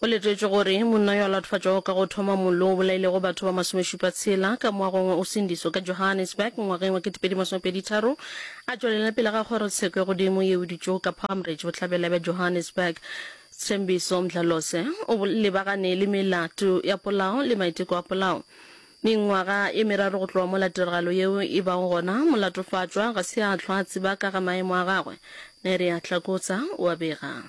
Go letetšwe gore monna yo a latofatšwago ka go thoma mollo o bolailego batho ba masomešupa tshela ka moagong wa Usindiso ka Johannesburg ngwageng wa ketepedi masome pedi tharo a tšwelela pele ga kgorotsheko ya godimo yeo e dutšego ka Palmridge bohlabela bja Johannesburg. Sthembiso Mdlalose o lebagane le melato ya polao le maiteko a polao mengwaga e meraro go tloga mola tiragalo yeo e bago gona. Molatofatšwa ga se a hlwa a tseba ka ga maemo a gagwe. Nerea Tlakotsa o a bega.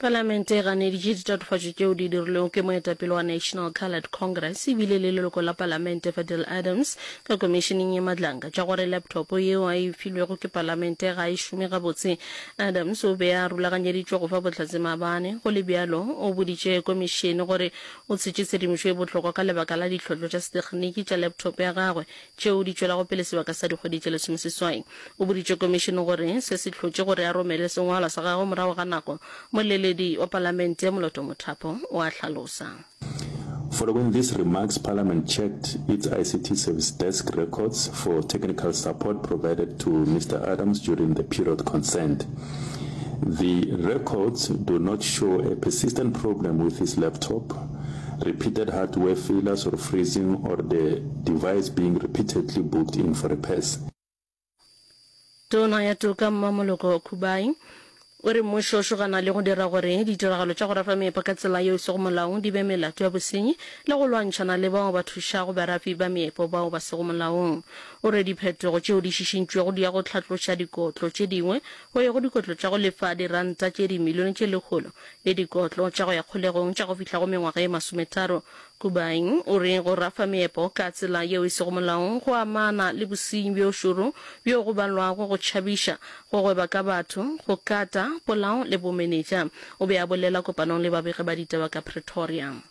Palamente e ganeditše ditatofatšo tšeo di dirilwego ke moetapele wa National Coloured Congress e bile le leloko la palamente Fadil Adams ka komišeneng ye madlanka tša gore laptop yeo a e filwego ke palamente ga e šome gabotse. Adams o be a rulaganyeditšwe go fa bohlatse maabane, go le bjalo o boditše komišene gore o tshetše tshedimošo e bohlokwa ka lebaka la ditlhohlo tša setekginiki tša laptop ya gagwe tšeo di tšwelago pele sebaka sa dikgwedi tše lesomeseswai. O boditše Komišene gore se se hlotše gore a romele sengwalwa sa gagwe morago ga nako, molleledi wa Palamente ya Moloto Mothapo o a hlalosa. Following these remarks, Parliament checked its ICT Service Desk records for technical support provided to Mister Adams during the period concerned. The records do not show a persistent problem with his laptop. Repeated hardware failures or freezing or the device being repeatedly booked in for repairs. Tona ya Toka Mmamoloko Khubai o re mmušo o šogana le go dira gore ditiragalo tša go rafa meepo ka tsela yeo e sego molaong di be melato ya bosenyi le go lwantšhana le bao ba thušago barafi ba meepo bao ba sego molaong. O re diphetogo tšeo di šišintšwego di ya go hlatloša dikotlo tše dingwe go ya go dikotlo tša go lefa diranta tše dimilione tše lekgolo le dikotlo tša go ya kgolegong tša go fihla go mengwaga ye masometharo. Kubain o re go rafa meepo ka tsela yeo e sego molaong go amana le bosenyi bjo šoro bjo go balwago go tšhabiša, go gweba ka batho, go kata, polao le bomenetša, o be a bolela kopanong le babegi ba ditaba ka Pretoria.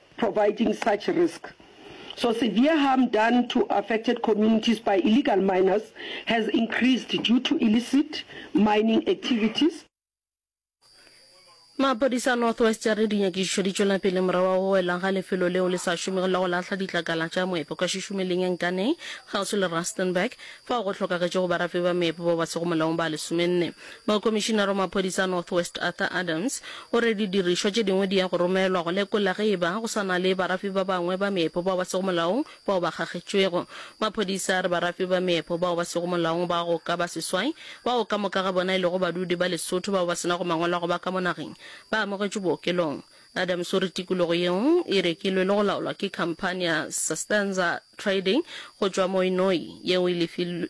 providing such risk. So severe harm done to affected communities by illegal miners has increased due to illicit mining activities. Maphodisa a North West a re dinyakišišo di tšwela pele morago wa go wela ga lefelo leo le sa šomego la go lahla ditlakala tša moepo ka Šušumeleng ya Nkaneng kgauswi le Rustenburg, fao go hlokagetšego barafi ba meepo bao ba sego molaong ba lesomenne. Mokomišinara wa Maphodisa a North West Arthur Adams o re didirišwa tše dingwe di ya go romelwa go lekola ge e ba go sa na le barafi ba bangwe ba meepo bao ba sego molaong bao ba kgagetšwego. Maphodisa a re barafi ba meepo bao ba sego molaong ba go ka ba seswai, bao ka moka ga bona e lego badudi ba Lesotho bao ba se nago mangwalo a go ba ka mo nageng, ba amogetšwe bookelong. Adams o re tikologo yeo e rekilwe le go laolwa ke khamphani ya Sustanza Trading go tšwa Moinoi yeo e lefilwe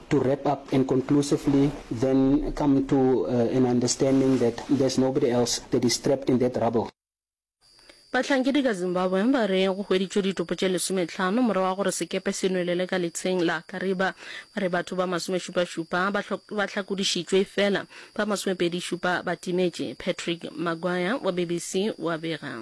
to wrap up and conclusively then come to an understanding that there's nobody else that is trapped in that rubble. Bahlankedi ka Zimbabwe ba re go hweditšwe ditopo tše lesometlhano morago ga gore sekepe se nwelele ka letsheng la Kariba. Ba re batho ba masomešupašupa ba ba hlakodišitšwe efela ba masomepedišupa ba timetše. Patrick Maguire wa BBC o a bega.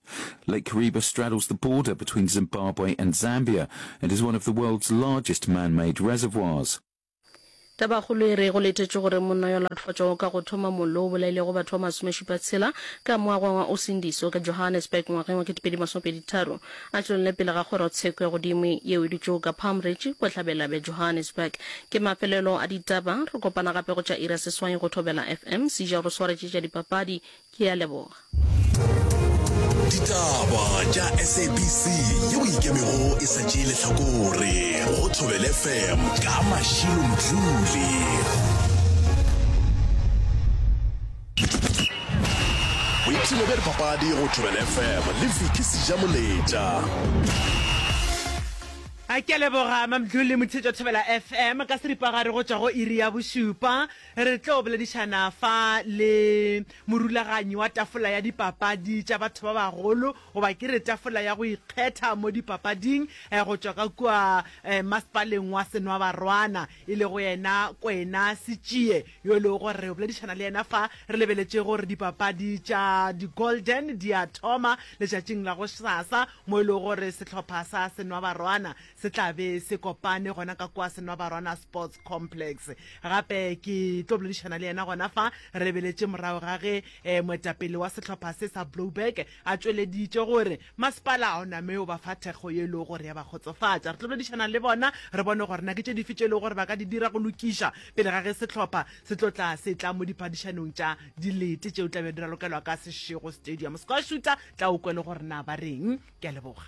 Lake Kariba straddles the border between Zimbabwe and Zambia and is one of the world's largest man-made reservoirs. Tabakgolo e re go letetšwe gore monna yo a latofatšwago ka go thoma mollo o bolailego batho ba masomešupa tshela ka mo a gwangwa o sindiso ka Johannesburg ngwageng wa ketepedi masomepedi tharo a tšwelele pele ga kgorotsheko ya godimo yeo e dutšego ka Palm Ridge bohlabela bja Johannesburg. Ke mafelelo a ditaba, re kopana gape go tša iri ya seswai go Thobela FM, Sija o re swaretše tša dipapadi, ke a leboga ditaba tša sabc yeo e ikemego e sa tšee lehlakore go thobele fm ka mašilo mdluli boipshino bja dipapadi go thobele fm le viki seja moletša a ke leboga mamdluli motheetša thobela fm ka seripagare go tšwa go iri ya bošupa Re tlo boledišana fa le morulaganyi wa tafola ya dipapadi tša batho ba bagolo, goba ke re tafola ya go ikgetha mo dipapading, go tšwa ka kua masepaleng wa Senwabarwana, e lego yena Kwena Sitšie, yo e lego gore re yo boledišana le yena fa. Re lebeletše gore dipapadi tša di-Golden di a thoma letšatšing la gosasa, mo e lego gore sehlopha sa Senwabarwana Se tla be se kopane gona ka kwa Senwabarwana Sports Complex. Gape ke tlo boledišana le yena gona fa re beletše morago ga ge eh, moetapele wa sehlopha se sa Blouberg a tšweleditše gore masepala o name o ba fa thekgo ye e lego gore ya ba kgotsofatša. Re tlo boledišana le bona re bone gore na ke tše dife tše e lego gore ba ka di dira go lokiša pele ga ge sehlopha se tlo tla se tla mo diphadišanong tša dilete tšeo tla be di ralokelwa ka Seshego Stadium. Square Shooter tla o kwele gore na ba reng ke a leboga